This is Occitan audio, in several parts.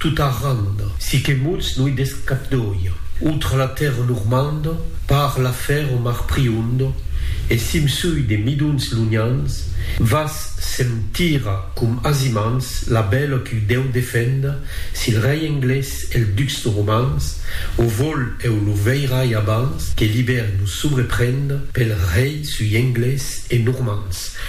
Tot arrand, si que mots no i desc cap d'oia, autre la tèrra normanda, par la fer o mar prionda, e simsui de midons lonhans, vas sentira com asimans la bèla qu'u dèu defenda, sil rei englés el ducs romans, o vol eu lo veirai abans que l'ibèri nos sobreprenda, pel rei sui englés e normans,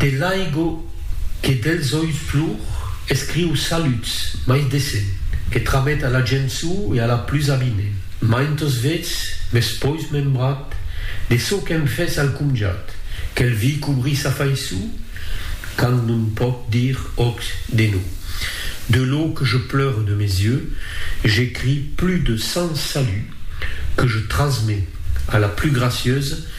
De l'aigo que dels oius plor, escriu saluts, mai decent, que tramet a la gent so e a la plus avinent. Maintos vets m'es pois membrat de çò qu'èm fes al comjat, quel vi cobri sa faiço, quand non pòc dir òc de no. De lo que je pleure de mes yeux, j'écris plus de cent saluts que je trasmets a la plus gracieuse,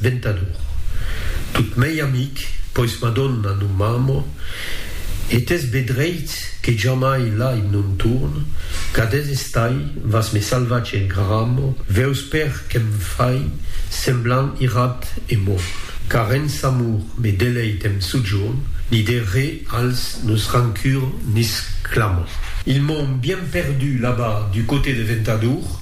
Ventador. Tot mei amic, pois Madonna non m'amo, e t'es be dreit que jamai l'ai non torn, cadés estai, vas me salvatge e gramo, veus per que'm fai semblant irat e morn. Car en s'amor me deleit e'm sojorn, ni de re als nos rancur nisclamo. Ils m'ont bien perdu là-bas du coté de Ventador,